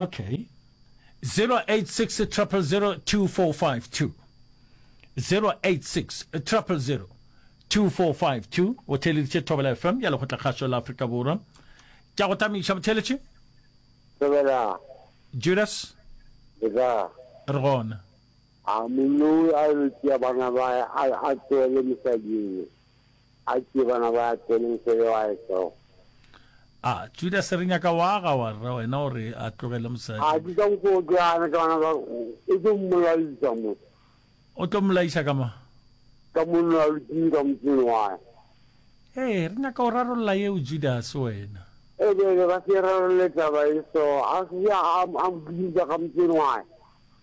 Ok, 0860002452, 0860002452, o theeleditše Thobela FM ya Lekgotlakgašo la Afrika Borwa. Ke a go tameiša motheeletši. Thobela. Judas. Le ka. Re gona. A moloi a yo tšea bana ba a tsoele mosading. A ke bana ba tseneng pele wa etsogo. A Judase re nyaka wa ga wa rra wena o re a tlogele mosadi. A ke ka mokgwa o tlo ana ka bana ba o tlo mmolaisa motho. O tlo mmolaisa ka ma. Ka monna wa lutini ka motseng wa. Ee re nyaka o rarolla yeo Judase wena. E bele ba se rarolle taba e so a se a a mbuisa ka motseng wa.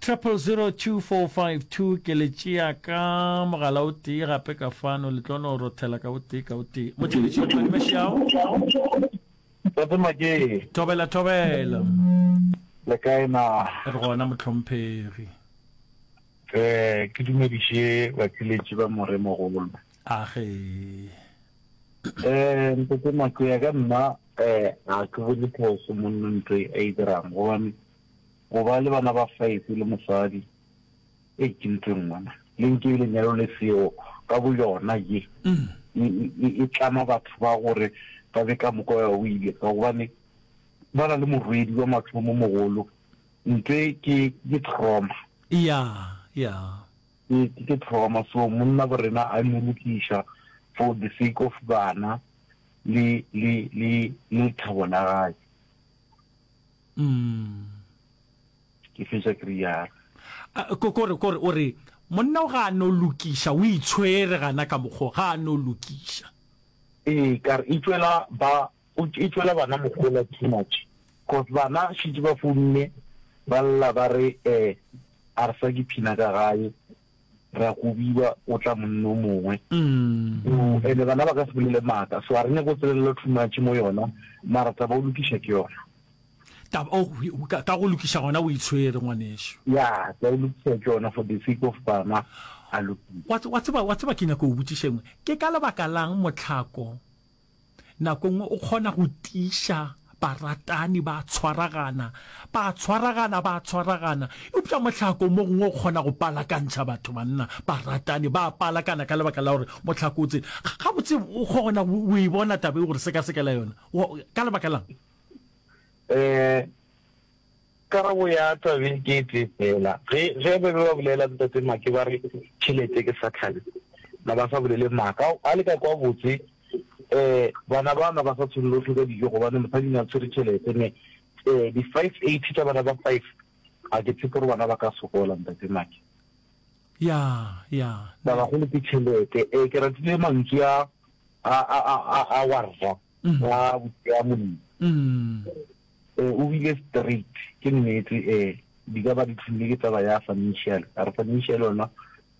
000245 ke le tšea ka mogala o tee gape ka fano le tlo no rothela ka o tee ka o tee motšheletši o kwane mešao Tate Makee. Thobela thobela. Le kae na? Re gona motlhomphegi. Eh ke dumediše batšweletši ba more mogolo. Age. Eh Tate Makee ka nna eh a ke bone phoso monna ntwe a e dirang gobane Go ba le bana ba five le mosadi, Ei children mona le nke lenyalo le seo ka boyona ye e tlama batho ba gore ba be ka moka o ile ka gobane ba na le morwedi wa mathomo mogolo ntle ke ke trauma. Ya ya ke ke trauma so monna bo rena a mo lokiša for the sake of bana le le le le thabo la gae. mm. ke fetša ke rialo kore kore o re monna o ga a no lokiša o itshwere gana ka mokgo ga a no lokiša ee kare e tswela ba e tswela bana mogola too much cause bana šitse ba founne ba lla ba re um a re sa ke phina ka gae ra go biba o tla monna o mongwe mm. ene bana ba ka se bolele maaka so a re nyako o tselelela thumatše mo yona mara taba o lokiša ke yona oh, ka go lokiša gona o itshwere ngwaneso ya ka o lokiša ke yona for the sake of bana a lokisa wa tseba ke nyako o botsišengwe ke ka lebaka lang motlhako Nako nngwe o kgona go tiša baratani ba tshwaragana, ba tshwaragana, ba tshwaragana. Eupša mohlako mo gongwe o kgona go palakantšha batho banna, baratani ba palakana ka lebaka la gore mohlako o tsene. Gabotse o kgona go e bona tabe gore sekasekela yona ka lebaka lang? Eh, Karabo ya tabeng ke e tee feela. Ge, ge ba be ba bolela Ntate Make ba re tšhelete ke Sathane, na ba sa bolele maaka? A le ka kwa botse, ee, bana bao na ba sa tshwere lohle ka dijo gobane mosadi ne a tshwere tšhelete. Me, ee, di five eighty tša bana ba five, ga ke tshepe gore bana ba ka sokola, Ntate Make. Ya, ya, ne. Ba bagolo ke tšhelete. Ee, ke ratile mantswe a, a, a, a, a wa Rra, a, a Molemi. Ee, o bile straight. Ke nnete, ee, di ka ba di tlhomile ke taba ya financial. A re financial yona,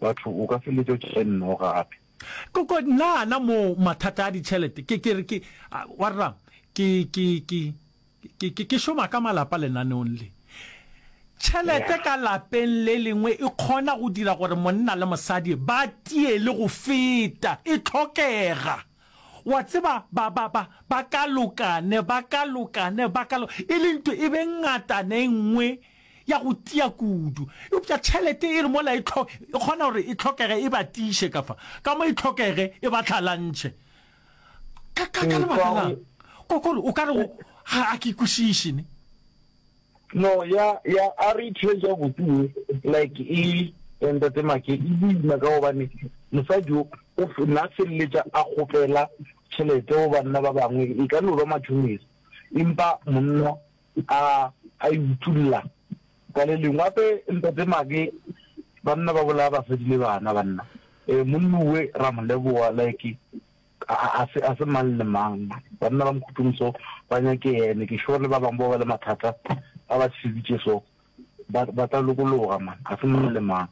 batho o ka feletša o tšere nno gape. Ko, ko, nna gana moo mathata a ditšhelete, ke, ke re, ke, a, wa rrang, ke, ke, ke, ke, ke, ke šoma ka malapa lenaneong le. Tšhelete ka lapeng le lengwe e kgona go dira gore monna le mosadi ba tie le go feta. E tlhokega. Wa tseba, ba, ba, ba, ba ka lokane, ba ka lokane, ba ka lo, e le nto e be ngatana e nngwe ya go tia kudu. Eupša tšhelete e re mola e tlho, e kgona gore e tlhokege e ba tiiše ka fa, ka mo e tlhokege e ba tlhalantšhe. Ka, ka, ka lebaka la'ng? Kokoro, o ka re go, ga, ga ke kwešiše, ne? No ya ya a re itshwetša botse ye like e ya ntate make e boima ka gobane mosadi o o na feleletša a kgopela tšhelete go banna ba bangwe e ka no ba matšhonisa empa monna a a e utolla ka le lengwe gape ntate make banna ba bolaya basadi le bana banna um monnuwe ra mo leboga like A se, a se mang le mang. Banna ba mokhutlong so ba nyake yene. Ke sure le ba bangwe bao ba le mathata ba ba tsheditše so ba, ba tla lokologa man. A se mang le mang.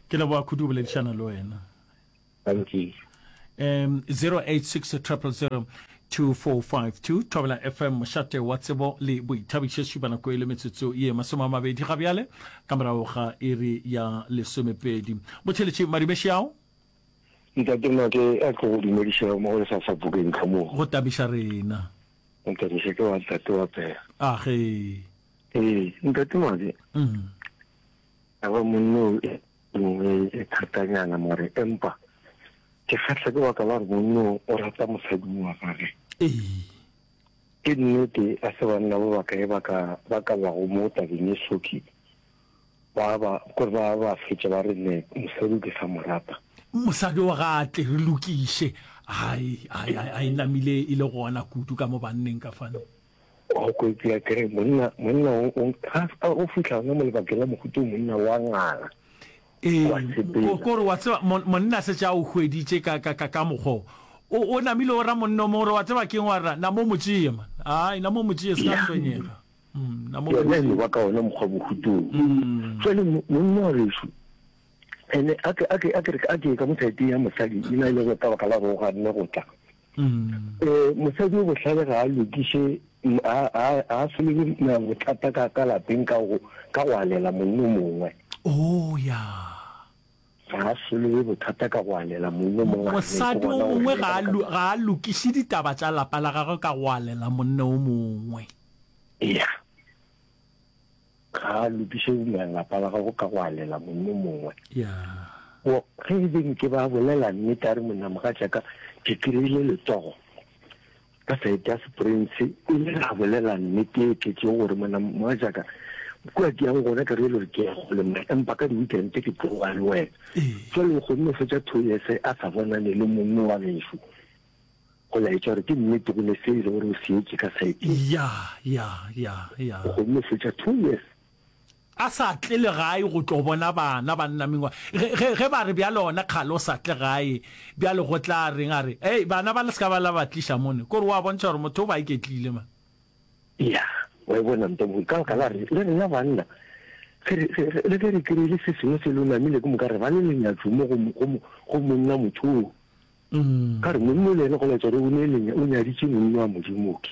Ke leboga kudu go boledišana le wena. Thank you. Um, 086 000 2452 Thobela FM mošate wa tsebo le boithabišo šupa nako e le metsotso ye masome a mabedi ga bjale ka morago ga iri ya lesomepedi botšheletše madibeši ao Ntate Make a tlo go dumedišago mo go lefasa bokeng ka moo. Go tabiša rena. Go tabiša ke wa ntate wa pela. A ge. Ee, ntate Make. Mm. A ba monno e nngwe e thatanyana mare empa ke kgatlha ke baka la re monno o rata mosadi wa gage. Ee. Ke nnete a se banna ba bakae ba ka ba ka bago mo tabeng e soki Ba ba kore ba ba fetša ba re ne mosadi o ke sa mo rata. Mosadi wa ga tle re lokiše. Hai hai hai hai namile e le gona kudu ka mo banneng ka fano. O ko ipea kere monna monna o o ga ska o fihla ona mo lebakeng la mohuta o monna wa ngala. Ee Wa sepela. ko kore wa tseba mon- monna se tša o hweditše ka ka ka ka mokgo o o namile o ra monna o mongwe gore wa tseba keng wa ra na mo mo tšeye man. Hai na mo mo tšeye se ka Yah. tshwenyega. Yena e no ba ka ona mokgwa bohutong. Jwale monna wa gešu ene a ke a ke a ke a ke ka mothaeteng ya mosadi e na le go ka baka la go ga nne go tla. Eh mosadi o bohlale ga a lokiše a a a solege na bothata ka ka lapeng ka go ka go alela monna o mongwe. Oh ya. Ga a solobe bothata ka go alela monna o mongwe a rile ke gona gore Mosadi o mongwe ga a lu, ga a lukiše ditaba tša lapa la gagwe ka go alela monna o mongwe. Eya, ga a lukiše lapa la gagwe ka go alela monna o mongwe. Yeah. Wo, ge e le nke ba bolela nnete a re monna mogatšaka ke kry-ile letogo, Ka saete ya Seprince, o ile a bolela nnete e tletšego gore, Monna mogatšaka, kua ke yago gona ka re e le gore ke ya kgole, mma, empa ka di-weekend ke tloga le wena. Jwale o kgonne go fetša two years a sa bonane le mongwe wa gešu. Go laetša gore ke nnete go ne se e le gore o seetše ka saeteng. Ya, ya, ya, ya. O kgonne go fetša two years. A sa tle legae go tlo bona bana ba nna mengwa. Ge, ge, ge ba re, Bjale gona kgale o sa tle gae, bjale go tla reng? A re, Hei, bana ba le se ka ba la ba tliša mone. Kore wa bontšha gore motho o ba iketlile, man. Ya, wa e bona, ntomogolo, ka baka la re, le rena banna, ge re, ge, ge, le ge re kry-ile se sengwe se lo namile, ke moka re ba le lenyatšo mo go, go, go monna motho o. Ka re, monna o le ene go laetša gore o ne le, o nyaditše monna wa Modimo, okay.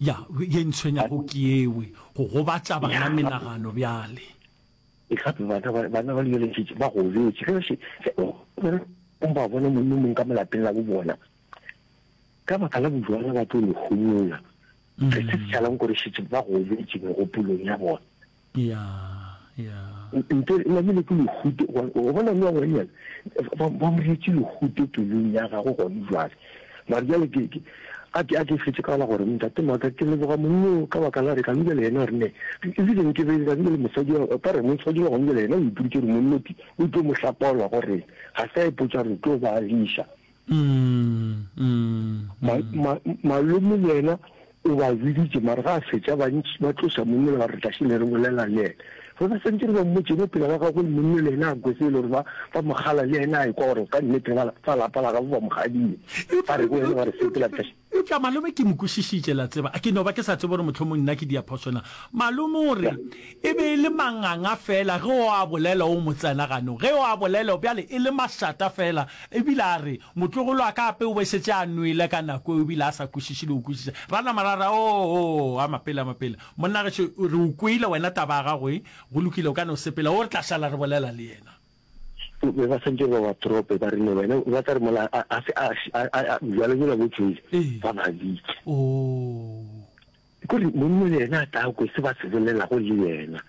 Ya, ye ntshwenyago ke yewe, go gobatša bana menagano bjale. E gape bana ba, bana ba lebeletšetše, ba gobetše. Ge, ge, ge o, o ba bona monna o mong ka mo lapeng la bo bona, ka baka la bojwala ba tlo le homola. Ge se se šalang kore šetše ba gobetše megopolong ya bona. Yeah, yeah. Nte namile ke lehute gobane o bona le wa ngwanyana ba ba mo retse lehute pelong ya gago gone jwale. Mare jwale ke ke a ke a ke fetse ka la gore ntate maka ke leboga monno ka baka la re ka nje le yena re ne e le ke be ka nje le mosadi wa ka re mo tshwadi wa nje le yena o iputse re monno ke o tlo mo hlapaola gore ga sa e potsa re tlo ba lisha Malome le yena o ba biditše, mara ga a fetša bantši ba tloša monna le ba re tlaše le re bolela le yena. Ge ba santše re ba mmotše mo pela ba gagwe, monna le yena a kwe se e le gore ba mogala le yena a ekwa gore ka nnete ba lapa la gabo ba mogadile. Ba re go yena ba re sepela tlaše. Eupša malome ke mo kwešišitše, la tseba, ke no ba ke sa tsebe gore mohlomong nna ke diaphoso na. Malome o re, E be e le manganga feela ge o a bolela o mo tsena gano, ge o a bolela bjale e le mašata feela. E bile a re, motlogolo wa ka gape o be šetše a nwele ka nako eo e bile a sa kwešiše le go kwešiša. Ra nama ra re, Oo, oo, a mapele, a mapele. Monna gešo, re o kwele wena taba ya gago e, go lokile, o ka no sepela, o re tla šala re bolela le yena. be ba santse ba ba trope ba rile wena ba tla re mola a se a jalo jela bo tswele ba ba bitse kore monna le yena a tla kwe se ba se bolelago le yena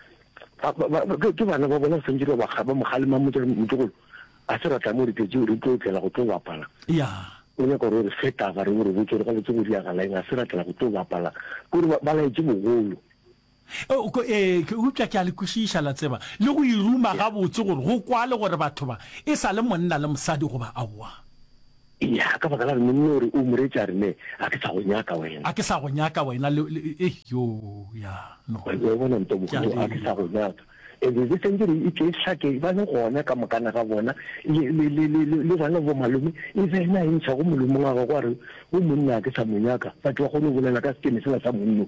ke bana ba bona santse ba ba ba mogalema motse motogolo a se ratla mo re tletse re tlo tlela go tlo bapala o nyaka gore re feta ba re gore botse re ga botse go diagala eng a se ratla go tlo bapala kore ba laetse bogolo Ee, eupša ke a le kwešiša, la tseba, le go e ruma gabotse, gore go kwale gore batho ba e sa le monna le mosadi goba aowa. Eya, ka baka la rena, nne o re, O Moreetši, a re, Nne, ga ke sa go nyaka wena. Ga ke sa go nyaka wena, le, le, ei, yo, ya, no. Wa, wa bona, ntomogolo, ga ke sa go nyaka. E be, be sentše re ikehlake, ba le gona ka mokana ga bona, le, le, le, le, le, le bona bomalome, e be ena a e ntšha go molomong wa gagwe, a re, Wo monna ga ke sa mo nyaka, batho ba kgone go bolela ka sekeme sela sa monno.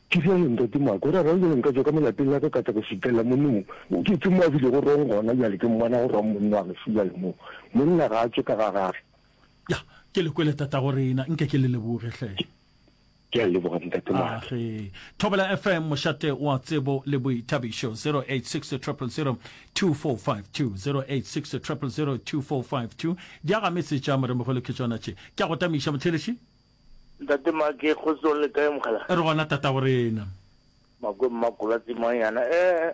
Ke bjale, Ntate Mark, o ra reng bjale? Nka tšwa ka mo lapeng la ka ka tla go šutlela monna mo. Ke, ke mo a bilego rong gona bjale, ke mmona go rong monna wa geso bjale mo. Monna ga a tšwe ka ga gage. Ya, ke le kwele, tatago rena. Nke ke le leboge, hle. Ke, ke a leboga, Ntate Mark. Ah, ge. Thobela FM, mošate wa tsebo le boithabišo, 0860002452, 0860002452. Diagametse tša Moremogolo ke tšona tše. Ke a go tamiša, Mothelesi. Ntate Make, Kgotsong le kae mogala? Re gona tatago rena. Makwe Mmakola Tsimanyana, eh,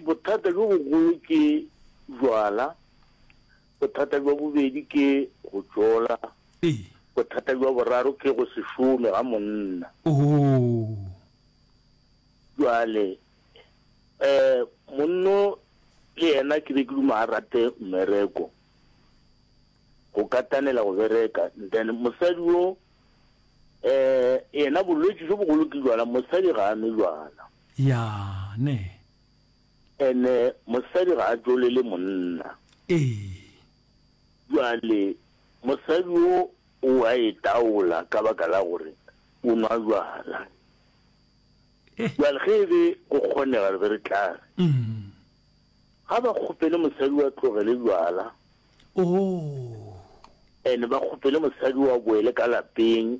bothata bjo bogolo ke jwala, bothata bjo bobedi ke go tšola, bothata bjo boraro ke go se šome ga monna. Ohoo. Jwale, eh, monno le yena ke be ke duma a rate mmereko. go katanela go bereka then mosadi wo eh yena bolwetši jo bogolo ke jwala mosadi ga a nwe jwala ya ne ene mosadi ga a jolele monna ee jwale mosadi wo o a e taola ka baka la gore o nwa jwala eh jwale ge e be go kgonega re be re tla re mm Ga ba kgopele mosadi wa tlogele jwala. Oh. And ba kgopele mosadi wa boele ka lapeng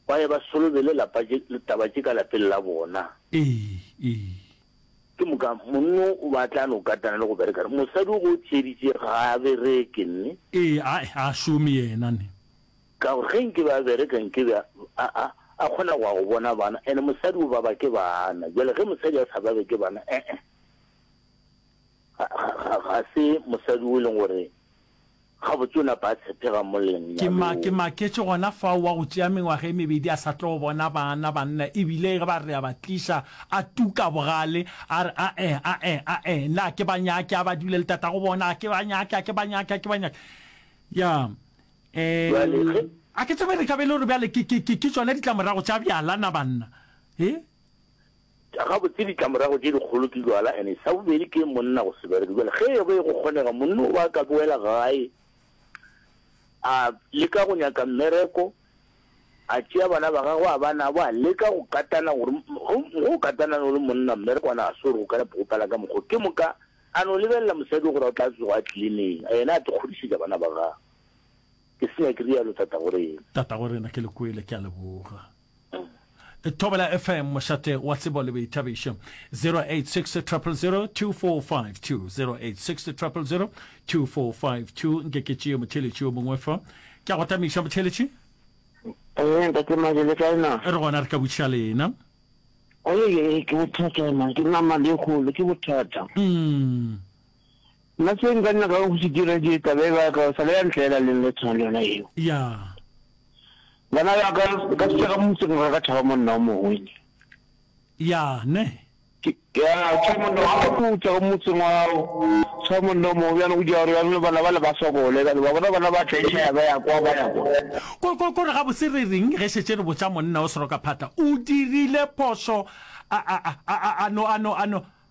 ba ye ba solobele lapa tše taba tše ka lapeng la bona. Ee, ee. Ke moka monno o batla no katana le go bereka ne. Mosadi o go tšeditše ga a bereke ne. Ee, a a šome yena ne. Ka gore ge nke ba bereka nke ba a a a kgona go ya go bona bana and mosadi o baba ke bana. Jwale ge mosadi a sa babe ke bana eh eh. ga se mosadi o e leng gore gabotse o napa a tshepega mo lenyalong ke ma ke maketše gona fao wa go tšea mengwaga e mebedi a sa tlo bona bana banna ebile ge ba re a ba tliša a tuka bogale a re ae ae ae nna a ke ba nyake a ba dule le tata go bona a ke ba nyake a ke ba nyake a ke ba nyake ya um a ke tsebe re ka be le gore bjale ke tsone ditlamorago tša bjalana banna e Tša gabotse ditlamorago tše dikgolo ke jwala ene sa bobedi ke monna go se bereke. Jwale ge e be go kgonega monna o ba ka boela gae a leka go nyaka mmereko, a tšea bana ba gagwe a ba nabo, a leka go katana gore go go katana no le monna mmereko a na a se gore go ka nepo go pala ka mokgwa. Ke moka a no lebelela mosadi gore o tla tsoga a tlile neng a yena a tlo kgodišetša bana ba gagwe. Ke senya ke rialo Tatagorena. Tatagorena ke le kwele, ke a leboga. Thobela FM mošate wa tsebo le boithabišo 0860002452 0860002452 nke ke tšee motheletši yo mongwe fa ke a go tamiša motheletši ee ntate male le kae na re gona re ka butša lena ee ke bothata na ke nama le kgolo ke bothata mm. Nna se nka nyakago go se dira ke taba e ba ka sa le ya ntlela le le tshwana le yona eo. Ya. Bana ba ka ka se ka motse go ka thaba monna o mongwe. Ya, ne. Ya, tshwa monna wa go tla go motse ngwao. Tshwa monna o mongwe bjalo go dira gore ya rona bana ba le ba sokole ka ba bona bana ba tla e ya ba ya kwa ba ya kwa. Ko ko ko re ga botse re reng ge šetse re botsa monna o seroka phata o dirile phoso a a a a no a no a no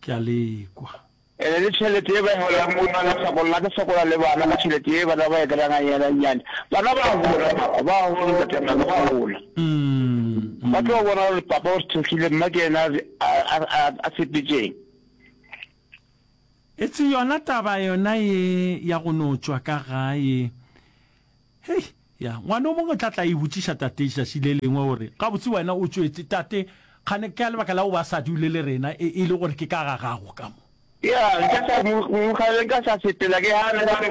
ke a le kwa. Ene le tšhelete ye ba e bolelang mo nna la sokolla ke sokola le bana ka tšhelete ye bana ba e kry-anga nyana nyane bana ba hola papa ba hola ntate maka ba hola ba tlo bona gore papa o sethekgile mma ke ena a sepetseng Etse yona taba yona ye ya go no tšwa ka gae Hei, ya, ngwana o mongwe o tla tla e botšiša tate letšatši le lengwe gore, Gabotse wena o tšwetše, tate, kgane ka lebaka la go ba sa dule le rena e, e le gore ke ka ga gago ka mo. Ya, nka sa mo, mo kgale nka sa sepela ke ga ne ba re,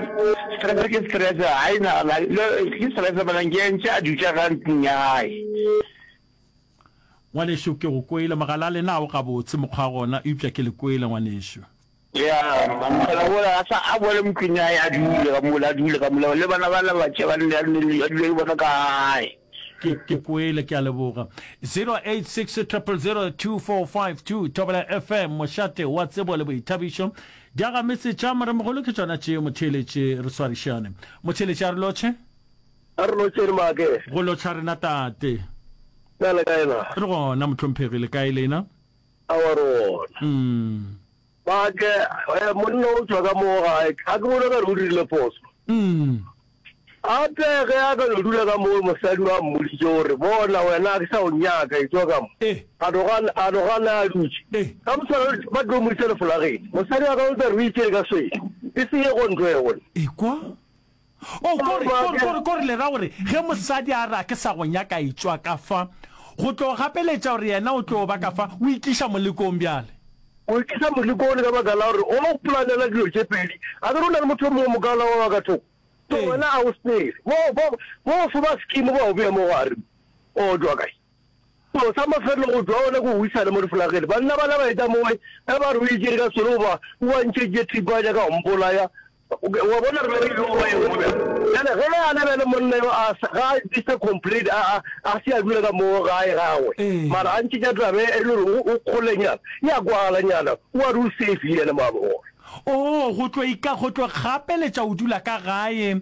Stress ke stress, ga e na, ke stress, malang ke entše a dutša ka ntlong ya gae. Ngwanešu, ke go kwele. Mogala, le na o gabotse mokgwa gona? Eupša ke le kwele, ngwanešu. Ya, mogala wola a sa a boele mo tlong ya hae, a dule ka mola, a dule ka mola, le bana bana ba tše ba nne, a nne le, a dule le bona ka gae. Ke, ke kwele. Ke a leboga. 0860002452, Thobela FM, mošate wa tsebo le boithabišo. Diagametse tša moremogolo ke tšona tšeo, motheeletši. Re swarišane, motheeletši a re lotšhe. A re lotšheng maake. Go lotšha rena tate. Na le kae na? Re gona mohlomphegi, le kae lena? Aowa re gona. Umm. Maake, eh, monna o tšwa ka mo gae, ga ke bone ka re o dirile phoso. Umm. Gape ge a ka no dula ka mo mosadi wa mmoditše gore bona wena a ke sa o nyaka e tšwa ka mo. Eh. A no gana, a no gana a dutše. Eh. Ka motshwana ba tlo mo isa lefolageng. Mosadi wa ka o tla re o itše ka swele. E se ye go ntlo ye gona. Ekwa. O, kore, kore, kore, kore le ra gore ge mosadi a re a ke sa go nyaka etšwa ka fa, go tlo gapeletša gore yena o tlo ba ka fa, o itliša molekong bjale. O itliša molekong ka baka la gore o no planela dilo tše pedi. A ke re o na le motho yo mongwe mokaona wa ba ka thoko? To, wena a o sepele. Bo, bo, bo fo ba scheme bao beya mo gare. O tšwa kae? Selo sa mafelelo go tšwa gona ke go isana mo diflagele. Banna bala ba eta mowe ge ba re o itše ka selo goba o a ntšeditše thipa wa nyaka go mpolaya. Wa bona, re be re ile go ba ye nngwe bjale. Bjale ge a na bjale monna yo a se, ga a Mister Complete, a, a, a se a dula ka moo gae gagwe, mara a ntšhetša taba e, e le gore o, o kgolenyana, e a kwagalanyana, o a re o safe yena, mwa bona. Oo, go tlo ika, go tlo gapeletša go dula ka gae,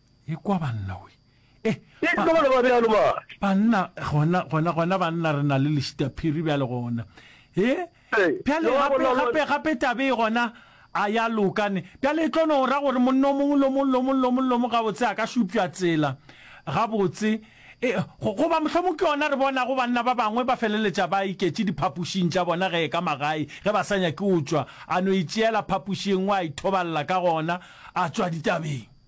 Ekwa banna we. Eh, Ke ba, tlogolo ba bjalo ba. banna gona, gona, gona banna re na le lešitaphiri bjale gona. He, Ee, bjale yo wa gape, bona lo- gape, gape tabe e gona a ya loka ne. Bjale e tlo no ra gore monna o mongwe lo mongwe, lo mongwe, lo mongwe, lo mongwe gabotse a ka šupša tsela gabotse. E, go- goba mohlomong ke yona re bonago banna ba bangwe ba feleletša ba iketše diphapošing tša bona ge e ka magae ge ba sa nyake go tšwa, a no itšeela phapoši e nngwe a ithobalela ka gona, a tšwa ditabeng.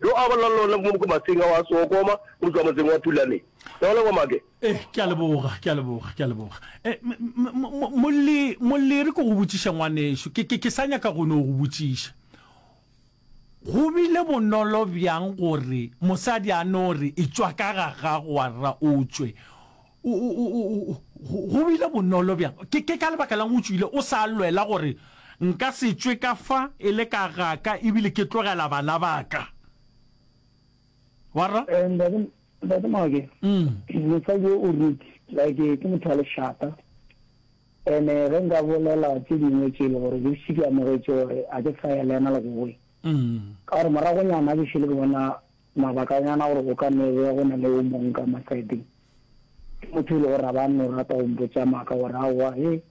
Yo a bolelang le wena ke mo Mokomaseng ao a se okoma go tšwa motseng wa Pulane. Ke a go leboga Make. Eh, ke a leboga, ke a leboga, ke a leboga. Eh, m, m, m, mo, Molli, Molli, re ko go botšiše ngwanešu. Ke, ke, ke sa nyaka go no go botšiša. Go bile bonolo bjang gore mosadi a no re, Etšwa ka ga gago, wa rra, o tšwe? Go bile bonolo bjang? Ke ka lebaka la'ng o tšwile o sa lwela gore, Nka se tšwe ka fa e le ka gaka ebile ke tlogela bana ba ka? Wa rra? Ntate Maake, mosadi yo o Ruti, like, ke motho wa lešata. And-e ge nka bolela tše dingwe tše e le gore ke šetše ke amogetše gore ga ke sa ya le yena legowe, ka gore moragonyana ke šele ke bona Mabakanyana gore go ka no be go na le o mongwe ka Masaebeng, ke motho e le gore a ba a no rata go mpotša maaka gore, Aowa he,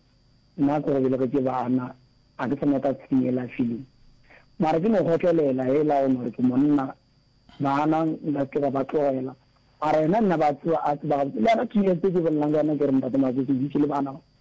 nna ke go belegetše bana, ga ke sa nyaka tshwene yela feeling. Mara ke no kgotlelela hela go no gore ke monna, bana nka se ke ka ba tlogela. Mara yena nna ba tseba, a tseba gabotse. Le yena Keelan se ke bolelago ka yena ke gore, Ntate Matsotsi o dutše le bana ba?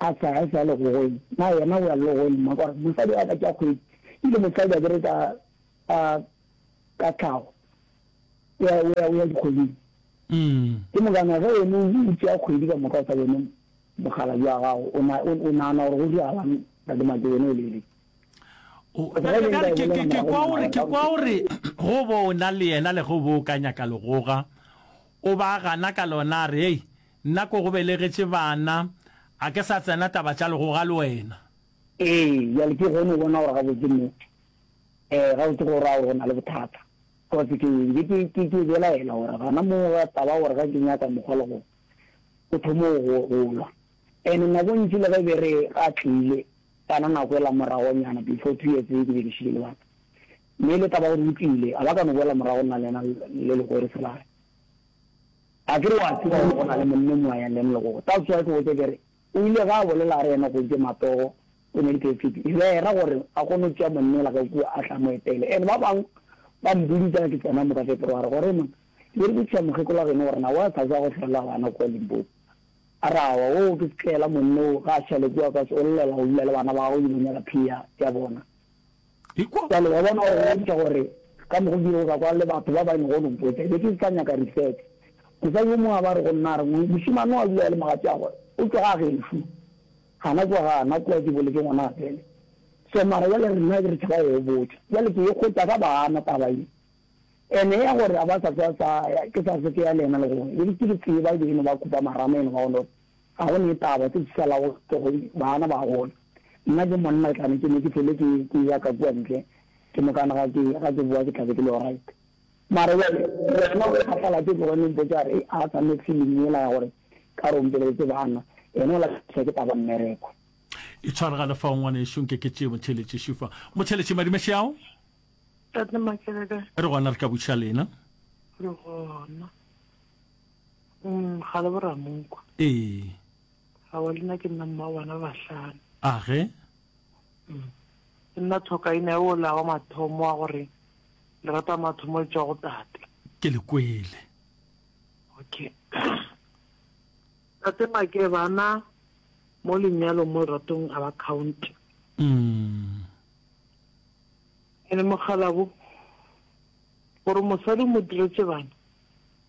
A sa, a sa le gogoeng. Na yena o ya lelogoeng, mma? Gore, Mosadi wa ka ke a kgwedi. E bile mosadi, akere, ka, ka, ka tlhago, o ya, o ya, o ya dikgweding. Ke mokana ge wena o, o tšea kgwedi ka moka o sa bone mokgalabje wa gago, o na, o, o nagana gore go diragalang, Tate Maki, wena o le le. O, bjale, bjale ke, ke, ke kwa o re, ke kwa o re, Go bo o na le yena le ge o bo o ka nyaka legoga, o ba gana ka lona, a re, Hei! Nna ko go belegetše bana, a ke sa tsena taba tša legoga le wena. Ee, bjale ke kgone go bona gore gabotse nnete. Ee, gabotse go ra gore go na le bothata. Kotsi ke be ke, ke, ke belaela gore gona moo ga taba gore ga ke nyaka mokgwa le go, o thome go, go lwa. And nako ntši le ge e be re ga tlile, kana nako ela moragonyana, before two years ke be ke šile le bana. Mme le taba gore o tlile, ga ba ka no boela morago nna le yena le le gore se lare. Akere wa tseba gore go na le monna mo a yang leng legogo? That's why ke botša ke re, o ile ge a bolela a re yena Kgontše Matogo o ne le Kefiti Hlera gore a kgone go tšea monna ola ka kua a tle a mo etele. And ba bang ba mbuditsa ke tsena mo ka Feberware gore, Hei monna, ke rekišetša mokgekolo wa geno gore na wa sa za go hlolela bana kua Limpopo? A re, Aowa, woo ke setlaela monna oo, ga a šale kua ka se o llela go dula le bana ba gagwe o ile go nyaka phiya ya bona. Ikwa bjalo, wa bona, gore o bontšha gore ka mogo ke yeo ka kwa le batho ba ba e lego Lompoita, ke be ke se sa nyaka resex. Mosadi yo mongwe a ba re go nna, a re, Mošemane o a dula a le mogatšagwe, o tšwa ga gešo. Ga na kwa, ga na kwa, ke boletše ngwana a tsene. So, mara bjale rena re tšhaba go e botša. Bjale ke e kgotša ka bana taba ye. Ene ya gore a ba sa tswa sa ya, ke sa se tsea le yena le gona. Ke be ke e tseba e be e no ba khupamarama, e no ba go no re, Ga go netaba se se sa lago ke go bana ba gola. Nna ke monna ke tla ke ne ke hlole ke ke eya ka kua ntle ke mokana ga ke ga ke boa ke tla be ke le alright. Mara bjale wena o kgathala ke tloge ne mpotša re a sa next feeling yela ya gore ka re o mpeleletse bana yena o lahlehla ke taba mmereko. E tshwaragale fao ngwanešu nke ke tšee motheletši šufa. Motheletši madimo šeao. Tate Makeleka. Re gona re tla buša lena. Re gona. Mm, ga le boramoko. Ee. Ga wa lena ke nna mma bana bahlano. A ge? Mm. Ke nna thokaina e o la wa mathomo wa gore le rata mathomo e tšwa go tate. Ke le kwele. Okay. Tate Make bana mo lenyalo mo ratong a ba count. Mm. Ene mogalabo gore mosadi mo diretse bana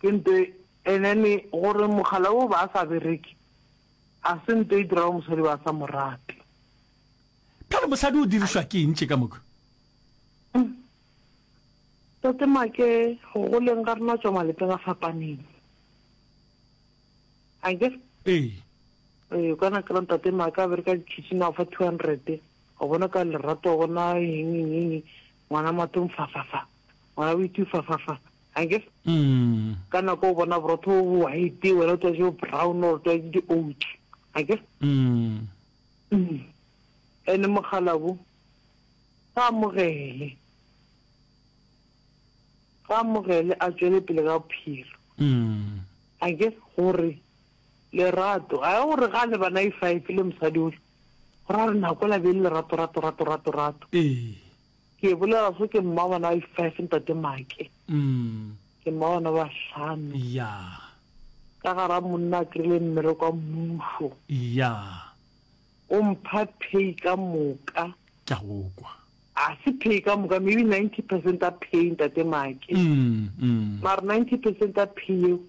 Ke nto and then gore mogala wo ba sa bereke a se nto e dirago mosadi ba sa morate. Phela mosadi o dirišwa ke eng tše ka moka? Tate Make go goleng ga rena tšwa malapeng a fapaneng. A ke? Ee. Ee, ka na kry-a Tate Make a bereka di-kitchen a o fa two hundred o bona ka lerato o bona eng eng eng ngwana matong fa fa fa ngwana o itse fa fa fa I guess ka nako o bona borotho bo bo white wena o tlwaetse bo brown or tlwaetse di-oats I guess ene mogalabu ga amogele ga amogele a tswele pele ka bophelo I guess gore lerato a ya gore ga le bana e five le mosadi ole gore a re nako la be le lerato rato rato rato rato Ke bolela se ke mma bana ba five ntate Make. Ke mma bana ba hlano. Yeah. Ka gara monna a krile mmere kwa mmuso. Yeah. O mpha pay ka moka. Ke a go kwa. A se pay ka moka maybe 90 percent a pay ntate Make. Mara 90 percent a pay eo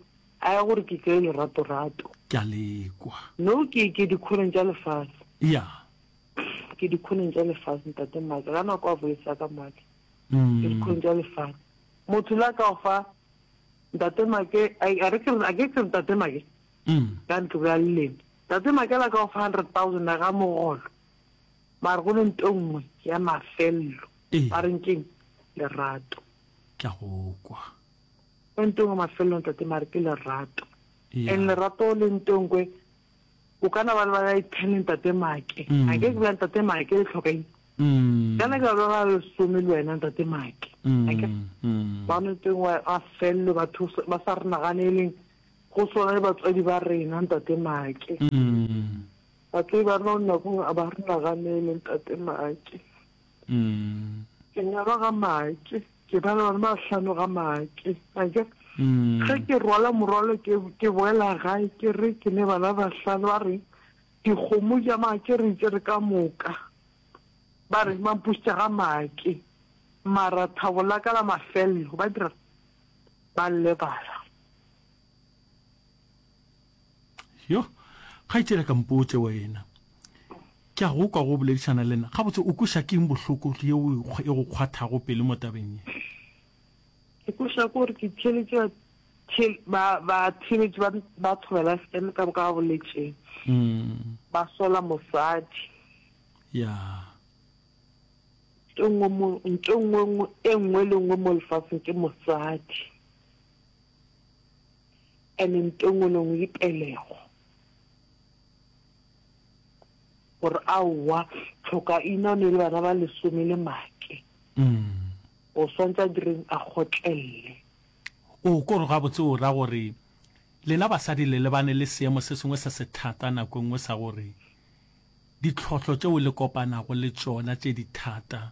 a ya gore ke kry lerato-rato. Ke a le kwa. No ke ke dikgoreng tša lefase. Yeah. Ke dikhoneng tša lefase, ntate Mike, ga na kwa boletsa ka matla. Ke dikhoneng tša lefase. Motho la ka fa, ntate Mike, a re ke a ke ke ntate Mike. Ka ntlo bja leleme. Ntate Mike la ka fa 100,000 ya ga mogolo. Mara go le nto nngwe ya mafello. Ba reng keng? Lerato. Ke a go kwa. Go nto nngwe mafello ntate mare ke lerato. And lerato le nto nngwe O ka na ba le ba ten ntate Make. Mm. A ke ke bula ntate Make le tlhoka eng? Mm. Kana ke ba ba lesome le wena ntate Make. Mm. A ke mm. ba no teng wa a fello batho ba sa re naganeleng go swana le batswadi ba rena ntate Make. Mm. Batswadi ba rena nna go a ba re naganeleng ntate Make. Mm. Ke nyalwa ga Make. Ke ba le bana ba hlano ga make. Ake, ge ke rwala morwalo ke, ke boela gae ke re ke ne bana ba hlano ba re dikgomo ja make re itse re ka moka. Ba re mampusitša ga make. Mara thabo la ka la mafello ba dira ba lebala. yo kgaitšela ka mpotse wena ke a go kwa go boledišana le nna gabotse o kweša keng bohloko ye e go kgwathago pele mo tabeng ye ke kweša gore ke theletše batheletši ba ba thobela fm ka boka ba boletseng mm. ba sola mosadi ya nto nngwe e nngwe le nngwe mo lefatsheng ke mosadi and nto engwe le engwe e pelego gore aowa tlhokaina o ne le bana ba lesome le make o swantse a direng a gotlelele o kore ga botse o ra gore lena basadi le lebane le seemo se sengwe se se thata nako e nngwe sa gore ditlhotlho tšeo le kopanago le tšona tše di thata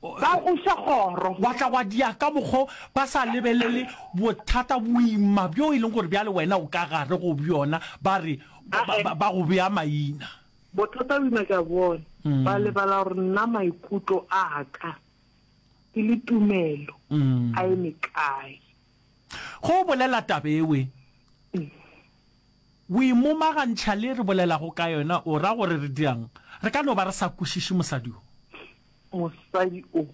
Ba buša kgoro, wa tla wa diya ka mokgo ba sa lebelele bothata boima bjo e leng gore bjale wena o ka gare go bjona, ba re ba go bea maina. Bothata boima ke a bona, ba lebala gore nna maikutlo a ka ke le tumelo a eme kae. Ge o bolela taba ewe, o e momagantšha le e re bolelago ka yona, o ra gore re dira'ng? Re ka no ba re sa kwešiše mosadi o. Mosadi o.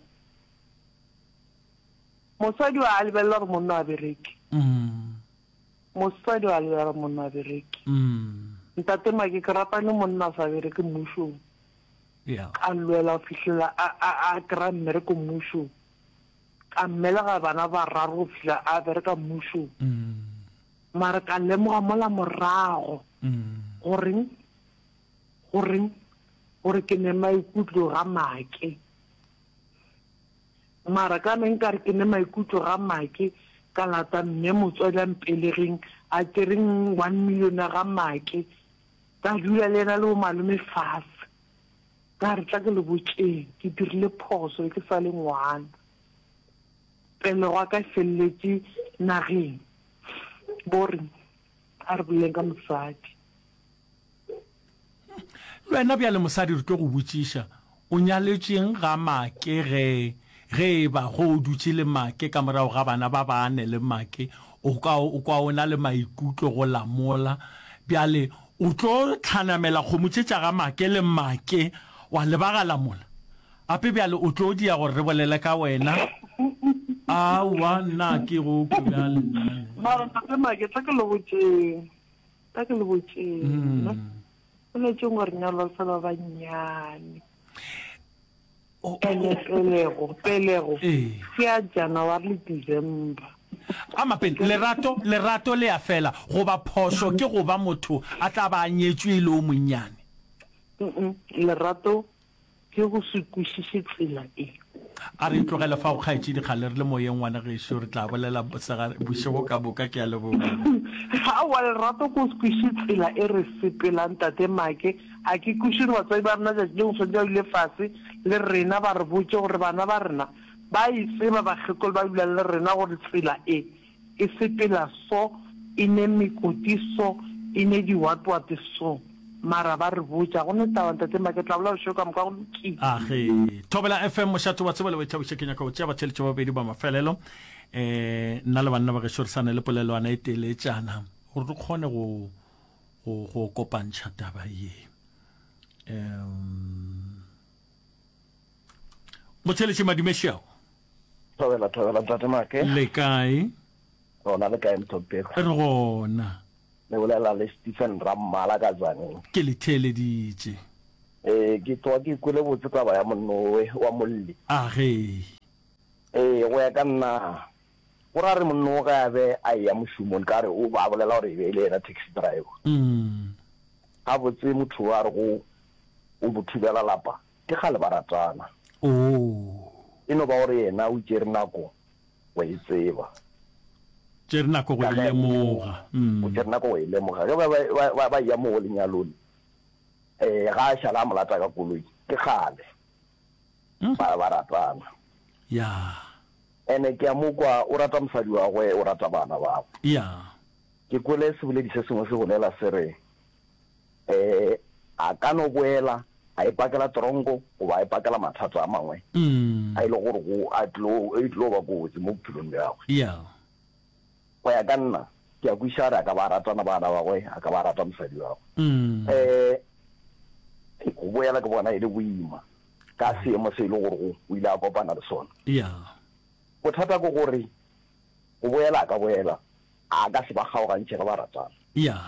Mosadi o a lebelela gore monna o a bereke. Mosadi o a lebelela gore monna o a bereke. Ntate Make, ke rata ne monna a sa bereke mmušong, a lwela go fihlela a kry-a mmereko mmušong. ka mmelega bana bararo go fihla a bereka mmušong. Mara ka lemoga mola morago goreng, goreng, gore ke ne maikutlo ga make. Mara ka ne nkare ke ne maikutlo ga make, ka lata mme motswadi a mpelegeng, a tšereng one million ya ga make, ka dula le yena le bo malome fase. Ka re, Tla ke le botšeng, ke dirile phoso ke sa le ngwana, pelego ya ka e feleletše nageng. Bo re, A re boleleng ka mosadi. Le wena bjale mosadi re tlo go botšiša, o nyaletšeng ga Make ge Ge e ba ge o dutše le Make ka morago ga bana ba bane le Make, o ka o kwa o na le maikutlo go lamola. Bjale o tlo hlanamela kgomo tše tša ga Make le Make wa lebagala mola. Gape bjale o tlo diya gore re bolele ka wena. Aowa, nna a ke go kwe bjale nna le. Mara ntate Make, tla ke le botšeng, tla ke le botšeng. Boletšeng gore nyalwa se ba bannyane. go Pelego, pelego, ke ya January le December. A mapele, lerato, lerato le ya fela, goba phošo ke go ba motho a tla ba a nyetšwe e le o monnyane? Mm-mm, lerato ke go se kwešiše tsela e. A re e tlogele fao, kgaetšedi, kgale re le moyeng, ngwana gešo, re tla bolela mosegare bošego ka moka. Ke a leboga. Aowa, lerato ke go se kwešiše tsela e re sepelang, Tate Make. A ke kweše gore batswadi ba rena tšatši lengwe swanetše ba dule fase le rena ba re botše gore bana ba rena ba e tseba bakgekolo ba dulang le rena gore tsela e e sepela so, e ne mekoti so, e ne diwatwate so. Mara ba re botša. Go ne taba, Ntate Mma, ke tla bolela bošego ka moka go lokile. Age. Thobela FM, mošate wa tseba le wa ithabiša, ke nyaka go tšea batheeletša ba babedi ba mafelelo. Eh, nna le banna ba gešo re sane le polelwana e teletšana gore re kgone go go go kopantšha taba ye um motheletše madimešao thobela thobela ntate make le kae gona le kae mthopego re gona le bolela le stephen rammala ka tsaneng ke le theeleditše ee ke tloga ke kwele botse taba ya monowe wa molli a ge ee go ya ka nna Go ra re monno ge a be a eya mošomong, nka re o ba bolela gore e be e le yena taxi driver. Gabotse motho o a re go o mo thubela lapa ke kgale ba ratana. E no ba gore yena o tšere nako go e tseba. Tšere nako go e lemoga. O tšere nako go e lemoga. Ge ba ba eya moo lenyalong, ga a šala a mo lata ka koloi, ke kgale ba ratana. Ene ke a mo kwa, o rata mosadi wa gwe, o rata bana ba gwe. Ya. Ke kwele seboledi se sengwe se bolela se re, um a ka no boela a ipakela tronko goba a ipakela mathata a mangwe a e le gore go a tlo, e tlo ba kotsi mo bophelong bja gagwe. Ya. Go ya ka nna, ke a kwešiša gore a ka ba a ratana bana ba gagwe, a ka ba a rata mosadi wa gagwe. Um, go boela ke bona e le boima ka seemo se e le gorego o ile a kopana le sona. Yeah. Bothata ke gore go boela a ka boela, a ka se ba kgaogantšhe ge ba ratana. Yeah.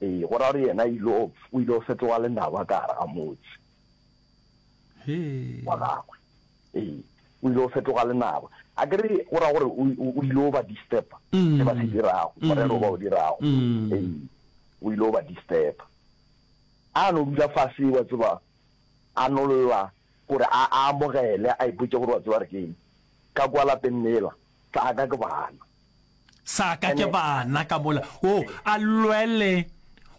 Ee, go ra gore yena ile o ile o fetoga lenaba ka gare ga motse He. wa gagwe. Ee, o ile o fetoga lenaba. A ke re go ra gore o ile o ba disturba se ba se dirago, morero o ba o dirago. Ee, o ile o ba disturba. A no dula fase, wa tseba, a no lla gore a a amogele, a ipotše gore wa tseba re keng. Ka kwa lapeng lela, sa ka ke bana. Sa ka ke bana ka mola. O a lwele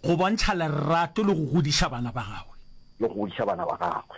go bontšha lerato le go godiša bana ba gagwe. Le go godiša bana ba gagwe.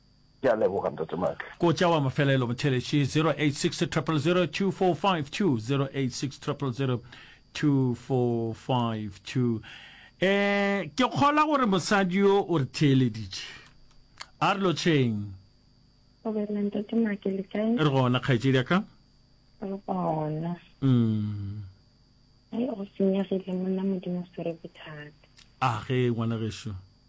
Ke a leboga Ntate Matle. Ko tša wa mafelelo motheletši 0860002452 0860002452 um ke kgolwa gore mosadi yo o re theeleditše a re lotšheng re gona kgaetšedi ya ka re gona um go senyegile monna modimo sere bothata a ge ngwana gešo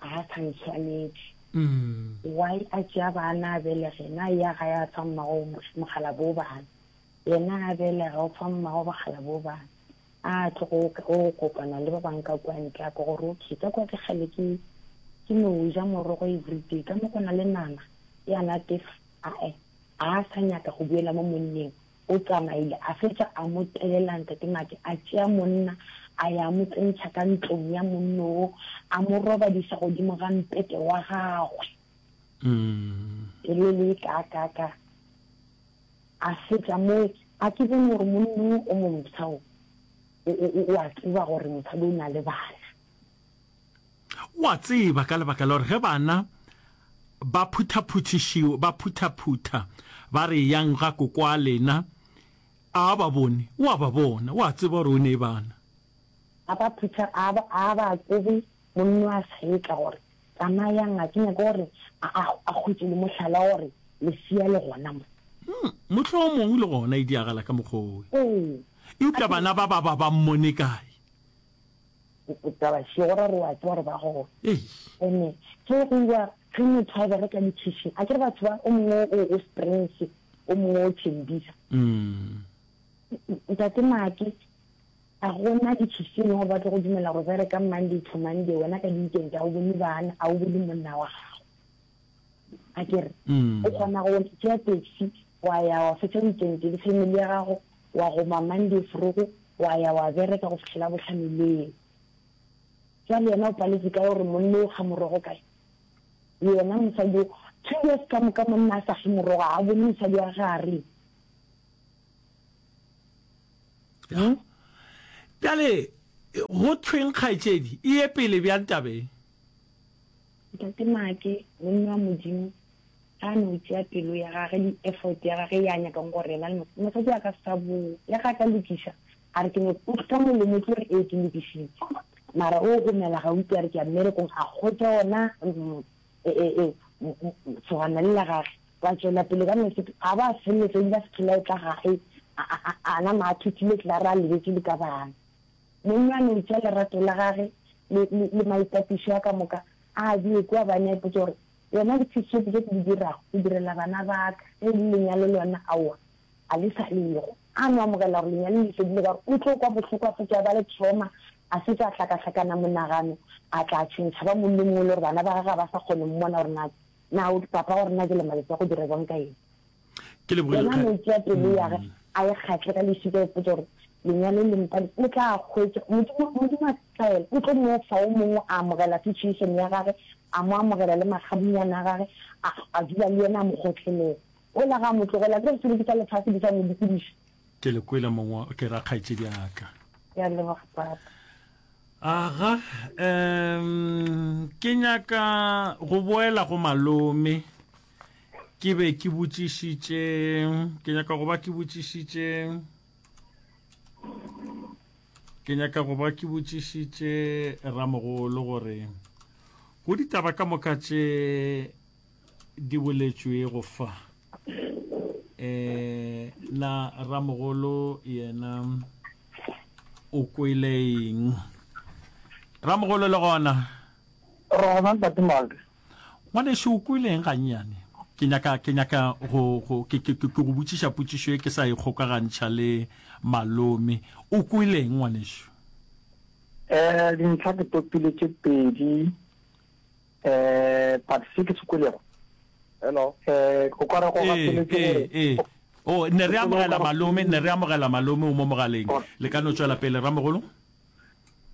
ga sa ntshwanetse mm. why a tšea bana a belege na ya ga ya fa mmago mogala bo bana yena a belega o fa mmago bogala bo bana a tlo go kopana le ba bangwe ka kwa ntle a ko gore okay ka kwa ke gale ke ke no ja morogo everyday ka mo go na le nama ya natefa ae a sa nyaka go buela mo monneng O tsamaile a fetša a mo telela Ntate Maki a tšea monna a ya a mo tsentšha ka ntlong ya monnoo a mo robadiša godimo ga mpete wa gagwe. Pele le ka ka ka a fetša moo a ke bone gore monnoo o momsha o o a tseba gore mosadi o na le bana. O a tseba, ka lebaka la gore ge bana ba phuthaphuthišiwa, ba phuthaphutha, ba re eyang ga kokoa lena, a ba bone? O a ba bona. O a tseba gore o ne bana. A ba phutha, a ba, a ba tsebe monna wa seetla gore, Tsamayang, a ke nyake gore a, a, a hwetše le mohlala gore lesea le gona mo. Mm, mohlomong le gona e diagala ka mokgwa owe. Ee. Eupša bana ba ba ba ba mmone kae? taba šego ra re wa tseba gore ba gona ene ke go iwa ge motho a bereka di-kitchen a kere batho ba o mongwe o springs o mongwe o tšhendisa mm. ntate maake a gona di-kitchen gore ba tlo go dumela gore bereka monday to monday wena ka di-weekend a o bone bana a o bone monna wa gago a kere mm. o kgona go tšea taxi wa ya wa fetsa weekend le family ya gago wa goma monday frogo wa ya wa bereka go fitlhela botlhamileng jale yena o paletse ka gore monne o ga morogo kae le yena mosadi o two years ka moka monna a sa ge morogo a bone mosadi wa gare hmm? jale go thweng kgaetsedi e ye pele bjang tabeng Ntate Maake, monna wa Modimo, ge a no tšea pelo ya gage le effort ya gage ya nyakang gore yena le mosadi wa ka sa boo, le ge a ka lokiša, a re ke no ka molomo tlo re ee ke lokišitše. Mara o gomela ga utlwe a re ke ya mmerekong, a hwetša wona segwana le la gage. Ba tšwela pele ka nosi, a ba a feleletša a ile a se phela e tla gae, a nama a thothile etlare a lebetše le ka bana. Monna a no itša lerato la gage le, le, le maitapišo a ka moka, a a bee kua, ba ne a ipotša gore, Yona ke se tšope tše ke di dirago go direla bana ba ka, ge e le lenyalo lona, aowa, ga le sa le go. A no amogela gore lenyalo le fedile, ka gore o tlo kwa bohloko a fetša a ba le trauma, a fetša a hlakahlakana monagano, a tla tšhentšha, ba monna o mongwe le gore bana ba gagwe ga ba sa kgone mmona gore na, na o, papa wa rena jwale matsatsi a go dira bjang ka yena. Ke lebogile Gona kgale. metsi a pelo ya ge a e kgahle ka lešika a ipotša gore, Lenyalo le mpadi o tla a hwetša? Modimo, Modimo a tlaela, o tlo mo fa o mongwe a amogela situation ya gage, a mo amogela le makgabunyane a gage, a, a dula le yena a mo kgotlhelela. Ola ga a mo tlogela, a tlo re sebedisa lefase di sa mo dikodiša. Ke le kwele mong wa, ke ra kgaetšedi ya ka. Ke a leboga Papa. Aga, um, ke nyaka go boela go malome. ke be ke botšišitše ke nyaka go ba ke botšišitše ke nyaka go ba ke botšišitše ramogolo gore go ditaba ka moka tše di boletšwego fa eh na ramogolo yena o kweleeng ramogolo le gona rona ntate malde Ngwanešu, o kweleng gannyane? Ke nyaka, ke nyaka go, go, ke, ke, ke go botšiša potšišo ye ke sa e kgokagantšha le Malome. O kweleng, ngwanešu? Um, dintlha ke topile tše pedi. Um, but se ke se kwelego. Hello? Um, o ka re go gapeletše gore. Ee, ee, ee. Oh, ne re amogela Malome, ne re amogela Malome o mo mogaleng. Le ka no tšwela pele, Ramogolo.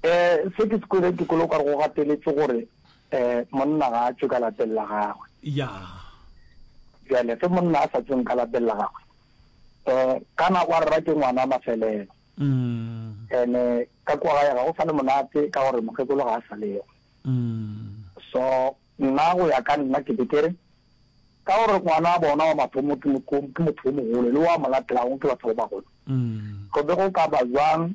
Um se ke se kwele dikolo o ka re go gateletše gore um monna ga a tšwe ka lapeng la gagwe. Ya. Bjale ge monna a sa tsweng ka lapeng la gagwe um ka nako a rera ke ngwana mafelelo. Mm. Ene ka kwa gae ga go sa le monate ka gore mokgekolo ga a sa lego. Mm. So nna go ya ka nna ke be ke re ka gore ngwana a bona wa mathomo ke motho o mogolo le wa mo latelago ke batho ba bagolo. Mm. Go be go ka ba jwang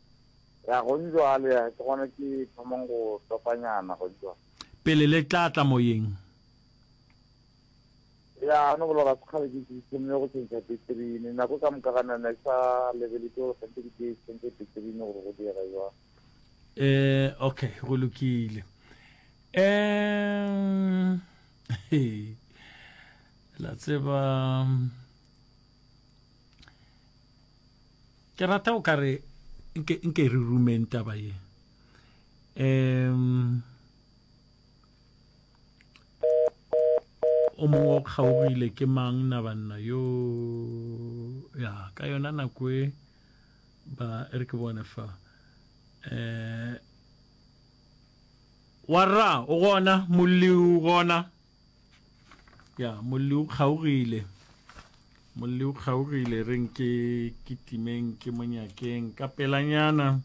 Ya, gong bjale, ya, ke gona ke thomang go topanyana gong bjale. Pele le tla tla Moyeng. Ya, no bola ga se kgale ke, ke thomile go tšhentšha peterini. Nako ka moka ga nna ke sa lebeletse gore gantši ke tee tšhentšhe peterini gore go diega jwang. Eh, okay, go lokile. Eh, he, la tseba. Ke rata o ka re nke, nke re rumeng taba ye. Um, o mongwe o kgaogile ke mang na banna yo ya ka yona nako e ba e re ke bone fa um warra o gona molliu gona ya molli o kgaogile molli o kgaogile re nke ke timeng ke monyakeng ka pelanyana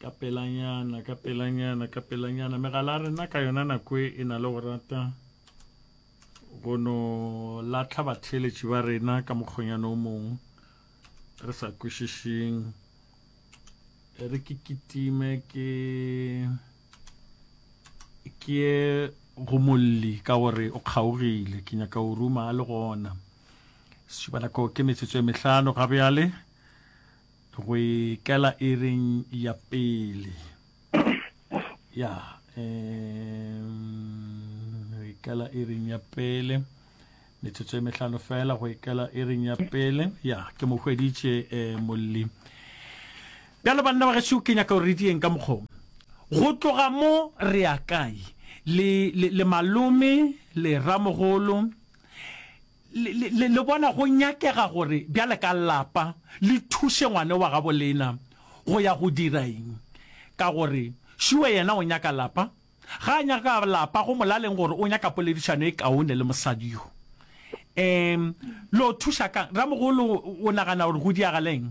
ka pelanyana ka pelanyana ka pelanyana megala rena ka yona nako e, e na le go rata go no latlha batheeletši ba rena ka mokgonyana o mongwe re sa kwešišeng re ke kitime ke ke ye go molli ka gore o kgaogile ke nyaka o ruma a le gona sešubanako ke metsotso e mehlano ga bjale go ikela e reng ya pele ya um, ikela e reng ya pele Metsotso e mehlano fela go ikela iring ya pele. Ya, ke mo hweditše e molli. Bjale banna ba gešo ke nyaka gore re dieng ka mokgong. Go tloga mo re ya kae? Le, le, le malome, le ramogolo, le, le, le, le bona go nyakega gore bjale ka lapa le thuše ngwane wa gabo lena go ya go dira eng? Ka gore šuwe yena o nyaka lapa, Ga a nyaka ka lapa go molaleng gore o nyaka poledišano e kaone le mosadi yo. Um, lo thuša kang? Ramogolo o nagana gore go diagaleng?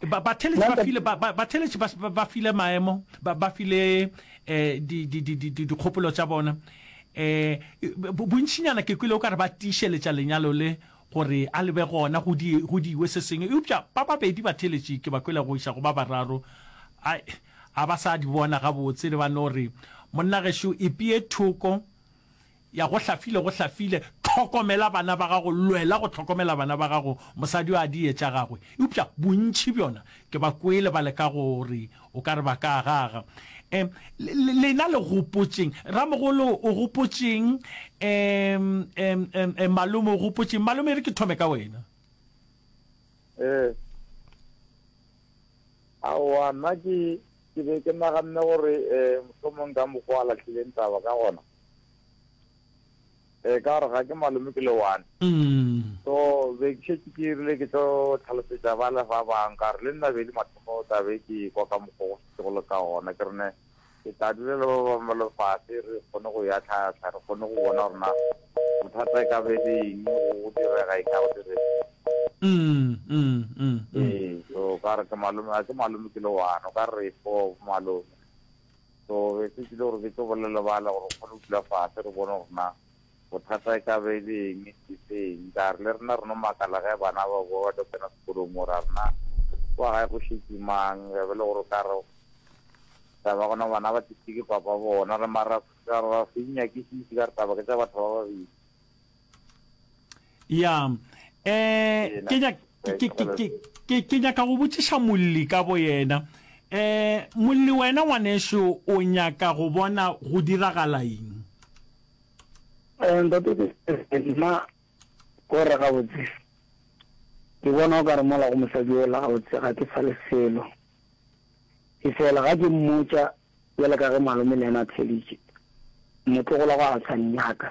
Ba, batheletši ba file, ba, ba, batheletši ba, ba- ba file maemo, ba, ba file eh, di- di- di- di- di- dikgopolo tša bona. Eh, bo- bontšinyana ke kwile o ka re ba tiišeletša lenyalo le gore a lebe gona go di- go diwe se sengwe. Eupša ba babedi batheletši ke ba kwele go iša go ba bararo. Ai, A ba sa di bona gabotse le ba no re, Monna gešo, ipee thoko, ya go hlafile, go hlafile, tlhokomela bana ba gago, lwela go tlhokomela bana ba gago, mosadi o a di etša gagwe. Eupša bontši bjona ke ba kwele ba leka go re, O ka re ba ka agaga. Um, le, lena le gopotšeng, Ramogolo o gopotšeng, um, um, um, um, Malome o gopotšeng. Malome, e re ke thome ka wena. Ee. Aowa, nna ke, ke be ke naganne gore e, mohlomong ka mokgwa a lahlileng taba ka gona, e, ka gore ga ke malome ke le one. So, be ke šetše ke rile ke tlo hlalosetša bale ba bang, ka gore le nna be e le mathomo taba e ke e kwa ka mokgwa go šetšego le ka gona, ke re ne, Ke tla dula le ba bangwe ba lefase, re kgone go eya tlhahla, re kgone go bona gore na bothata e ka ba e le eng, go direga eng, ga go direge eng. Ee, so ka re ke malome, ga ke malome ke le one, o ka re re four bo malome. So be se tsile gore ke tlo bolelela bale gore re kgone go dula fase re bone gore na. Bothata e ka be e le eng, ke seng? Ka re, Le rena re no makala ge bana ba bowa ba tlo kena sekolong mo, ra rena, Kwa gae go šetše mang? Ge be le gore o ka re, Tla ba gona bana ba tlišitšwe ke papa bona. Re, Mara, ra se di nyakišiše, ka re, Taba ke tša batho ba babedi. ya um ke nyaka go botšiša molli ka bo yena um molli wena ngwaneso o nyaka go bona go diragala eng um nna ko re ga botse ke bona o ka re mola go mosadi o la ga botse ga ke sa le selo e fela ga ke mmotsa bjale ka ge malome le ena a theleditše motlogola go a sa nyaka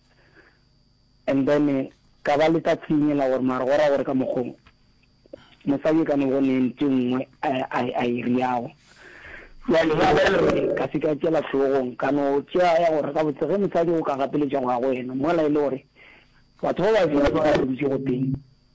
and then ka ba le ka tshenyela gore mare go ra gore ka mokgong mosadi e ka no bone ntse nngwe a e riago jale ya ba gore ka se ka tšela tlhogong ka no tšea ya gore ka botse ge mosadi o ka gapeletša go ya go wena mola e le gore batho ba ba dira ba dutse go teng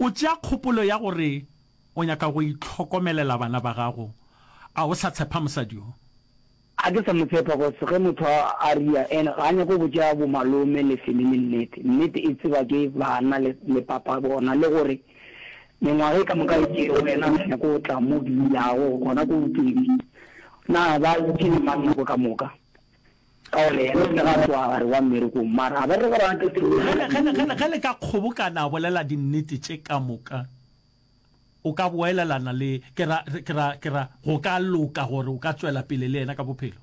O tšea kgopolo ya gore o nyaka go itlhokomelela bana ba gago. A o sa tshepa mosadi yo? Ga ke sa mo tshepa cos ge motho a a ria and ga a nyako botša bo malome le family nnete. Nnete e tseba ke bana le le papa bona le gore mengwaga e ka moka e tšere wena ga nyako go tla mo ke dulago gona ko Bopedi. Na ba tšere mang nako ka moka? Ka gona yena o ile ga tloga gare wa mmerekong, mara a ba re gore a tle tirong ya Ge, ge, ge, ge, ge le ka kgobokana a bolela dinnete tše ka moka, o ka boelelana le, ke ra, ke ra, ke ra, go ka loka gore o ka tšwela pele le yena ka bophelo.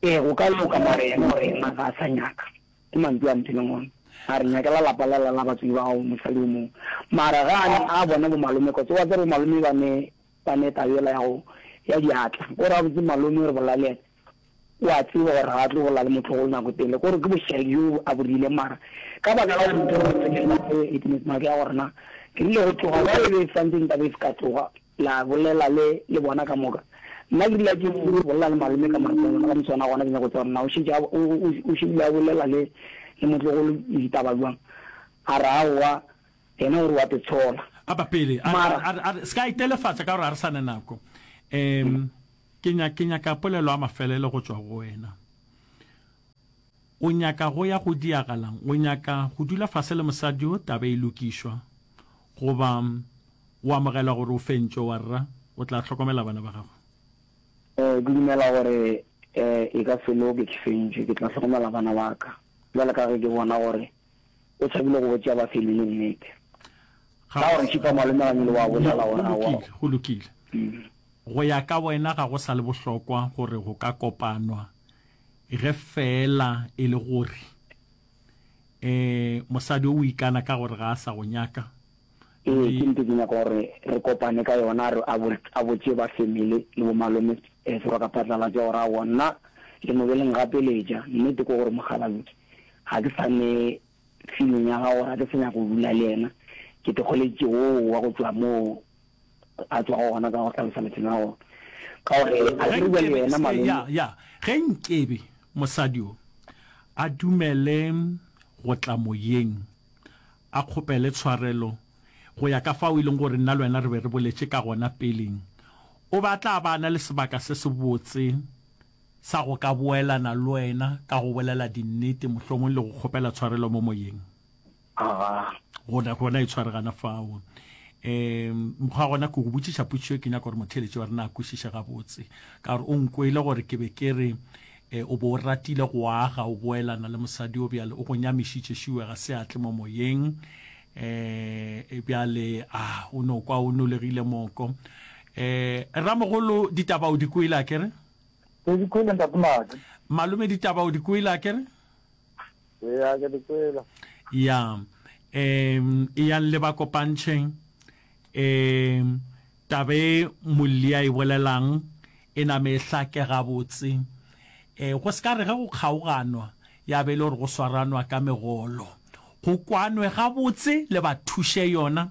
Ee, go ka loka, mara yena o reng a ga a sa nyaka? Ke mantšu a mphileng ona. A re nyakela lapa lela la batswadi ba gago, mosadi o mongwe. Mara ge a ne a bona bomalome, kotse wa tseba bomalome ba ne, ba ne taba yela ya go, ya diatla. O re, Gabotse malome, re bola le yena. O a tseba gore ga a tlo bolela le motlogolo nako e telele, ke gore ke bošaedi bjo a bo rileng. Mara ka baka la dintho tše tše ngata tše Witness Make ya gore na ke rile go tloga ba e be e santse nka be se ka tloga la bolela le le bona ka moka. Nna ke rile ke bolela le malome ka matshelwana ka moswana gona ke nyaka go tseba gore na o šetše o šebile a bolela le le motlogolo ditaba bjang. A re aowa, yena o re o a te tshola. A ba pele a re se ka itelefatša ka gore ga re sa na nako. Ke nya, ke nyaka polelo ya mafelelo go tšwa go wena. O nyaka go ya go diagalang? O nyaka go dula fase le mosadi yo taba e lokišwa? Goba o amogela gore o fentšwe, warra? O tla hlokomela bana ba gago? Ee, ke dumela gore e ka se loke ke fentšwe. Ke tla hlokomela bana ba ka, bjale ka ge ke bona gore o tshabile go botša Baselile nnete. Ga Ka gore šipa malome ga nyole wa bolela go gona wa. lokile, go lokile. Mm. Go ya ka wena ga go sa le bohlokwa gore go ka kopanwa ge feela e le gore eh mosadi o o ikana ka gore ga a sa go nyaka Ee, ke nnete ke nyaka gore re kopane ka yona, re a botše ba family le bo malome se ba ka phatlalatša gore aowa nna le mo be le ngapeletša. Nnete ke gore mokgalabje ga ke sa ne feeling ya gago gore ga ke sa nyaka go dula le yena, ke tlogeleditše wo wa go tšwa moo a tšwago gona ka go hlalosa lefelo la gona ka gore a ke re bjale yena malome. Ya, ge nkebe mosadi yo a dumele go tla moyeng, a kgopele tshwarelo, go ya ka fao e lego gore nna le wena re be re boletše ka gona peleng. O be a tla ba a na le sebaka se sebotse sa go ka boelana le wena ka go bolela dinnete, mohlomongwe le go kgopela tshwarelo mo moyeng. Gona, gona e tshware gana fao. Um, mokgwa gona ke go botšiša potšišo e ke nyaka gore motheeletši wa rena a kwešiše gabotse, ka gore o nkwele gore ke be ke re E, o be o ratile go aga, o boelana le mosadi yo, bjale o go nyamišitše šiwe, ga se a tle mo moyeng. E, e bjale, a, o no kwa o nolegile moko. E, Ramogolo, ditaba o di kwele, a ke re? Ke di kwele, Ntate Madi. Malome, ditaba o di kwele, a ke re? ya ke dikwela ya um e yang le ba kopantšheng um tabe molli a e bolelang e name e hlake gabotse um go se ka re ge go kgaoganwa ya be e le gore go swaranwa ka megolo go kwanwe gabotse le ba thuše yona